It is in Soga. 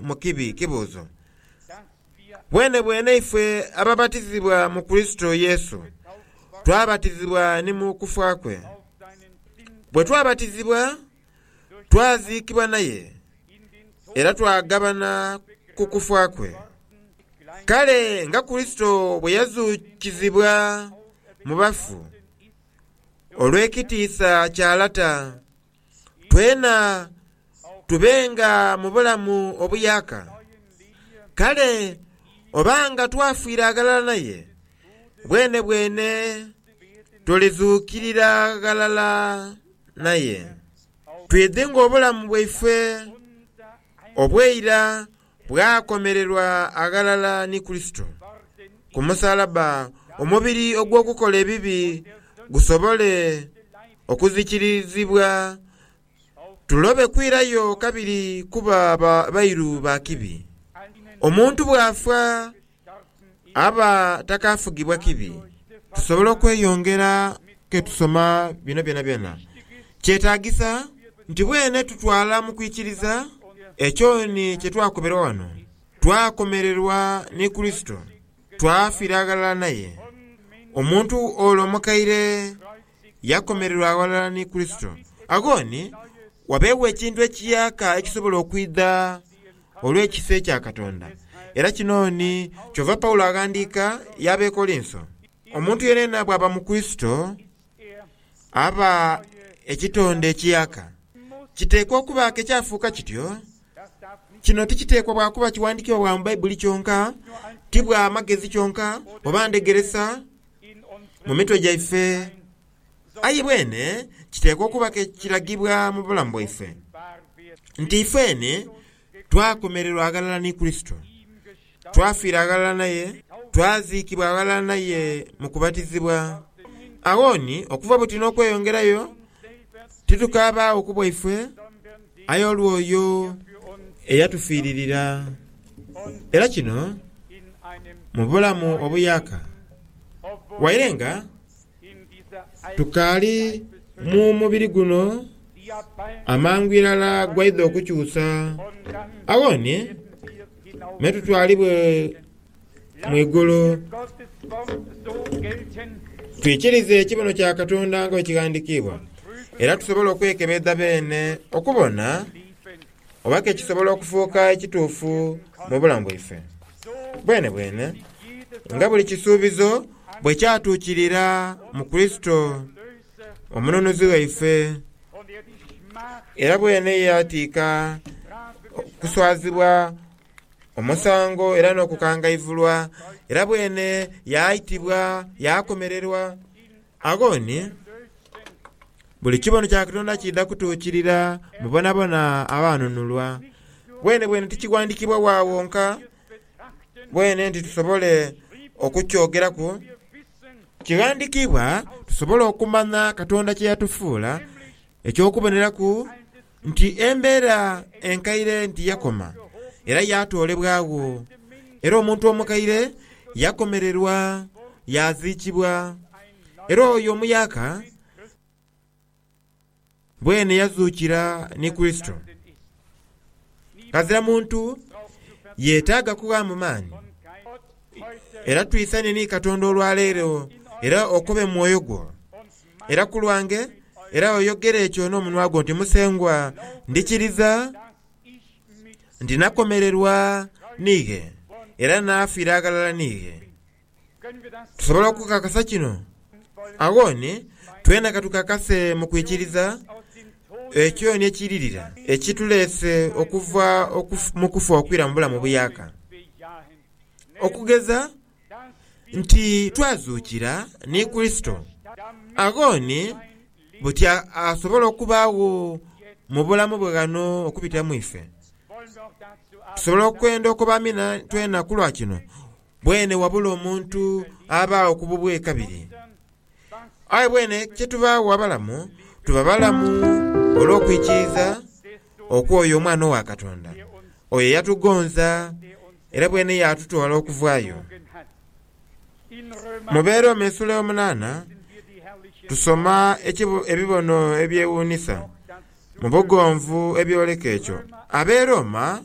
mu kibi kibuuzo. Bwenebwene ife ababatizibwa mu Kurisito Yesu, twabatizibwa ni mu kufa kwe. Bwe twabatizibwa, twaziikibwa naye era twagabana ku kufa kwe. Kale nga Kurisito bwe yazuukizibwa mu bafu olw'ekitiisa kya Lata, twena tubenga mu bulamu obuyaaka. Kale oba nga twafiira ghalala naye, bwenebwene tulidhuukirira ghalala naye. Twidhi ng'obulamu bwaife obw'eira Bw'akomererwa aghalala ni Kurisito ku musalaba, omubiri ogw'okukola ebibi gusobole okuzikirizibwa, tulobe kwirayo kabiri kuba bairu ba kibi. Omuntu bw'afa, abataakafugibwa kibi, tusobola okweyongera ke tusoma bino byonabyona. Kyetaagisa nti bwene tutwala mu kwikiriza ekyoni kye twakomerwa ghano, twakomererwa ni Kurisito, twafiira aghalala naye. Omuntu ole omukaire yakomererwa aghalala ni Kurisito. Agho ni wabeegho ekintu ekiyaaka ekisobola okwidha olw'ekisa ekya Katonda. Era kino ni kyova Paulo aghandiika y'Abekolinso, Omuntu yenayena bw'aba mu Kurisito, aba ekitonde ekiaka. Kiteekwa okubaaku ekyafuuka kityo. Kino tikiteekwa bwa kuba kiwandiikibwa bwa mu Baibuli kyonka, ti bwa magezi kyonka, oba ndhegeresa mu mitwe gyaife Aye bwene kiteekwa okuba ke kiragibwa mu bulamu bwaife nti ifeeni twakomererwa aghalala ni Kurisito, twafiira aghalala naye, twaziikibwa aghalala naye mu kubatizibwa. Agho ni okuva buti n'okweyongerayo, titukabaagho ku bwaife, aye olw'oyo eyatufiiririra. Era kino mu bulamu obuyaaka, waire nga Tukaali mu mubiri guno, amangu irala gwaidha okukyusa. Agho ni me tutwalibwa mu igulu. Twikirize ekibono kya Katonda nga bwe kighandikiibwa, era tusobole okwekebedha beene okubona Oba ke kisobola okufuuka ekituufu mu bulamu bwaife? Bwenebwene, nga buli kisuubizo bwe kyatuukirira mu Kurisito, Omununuzi waife. Era bwene yaatiika okuswazibwa, omusango, era n'okukangaivulwa, era bwene yaaitibwa, yaakomererwa. Agho ni buli kibono kya Katonda kiidha kutuukirira mu bonabona abaanunulwa. Bwenebwene tikighandiikibwa wa wonka bwene nti tusobole okukyogeraku. Kighandiikibwa tusobole okumanya Katonda kye yatufuula eky'okuboneraku nti embeera enkaire nti yakoma era yaatoolebwagho, era omuntu omukaire yakomererwa yaaziikibwa, era oyo omuyaaka bwene yazuukira ni Kurisito. Ghazira muntu yeetaaga kughaamu maani, era twisanhe ni Katonda olwaleero era okobe mwoyo gwo. era ku lwange, era oyogere ekyo n'omunwa gwo nti, Musengwa, ndikiriza nti nakomererwa niighe, era naafira aghalala niighe. Tusobola okukakasa kino? Agho ni twena ka tukakase mu kwikiriza ekyo ni ekiiririra ekituleese okuva mu kufa okwira mu bulamu obuyaaka. Okugeza. nti twazuukira ni Kurisito, agho ni buti asobola okubaagho mu bulamu bwe ghano okubitira mu ife? Tusobola okwenda okoba amina twena ku lwa kino? Bwene wabula omuntu abaagho ku bubwe kabiri. Aye bwene kye tubaagho abalamu, tuba balamu olw'okwikiiza. okwo oyo Omwana owa Katonda, oyo eyatugonza era bwene yaatutoola okuvayo. Mu Beeromi esuula ey'omunaana tusoma ebibono ebyewuunisa mu bugonvu ebyoleka ekyo. Abeerooma.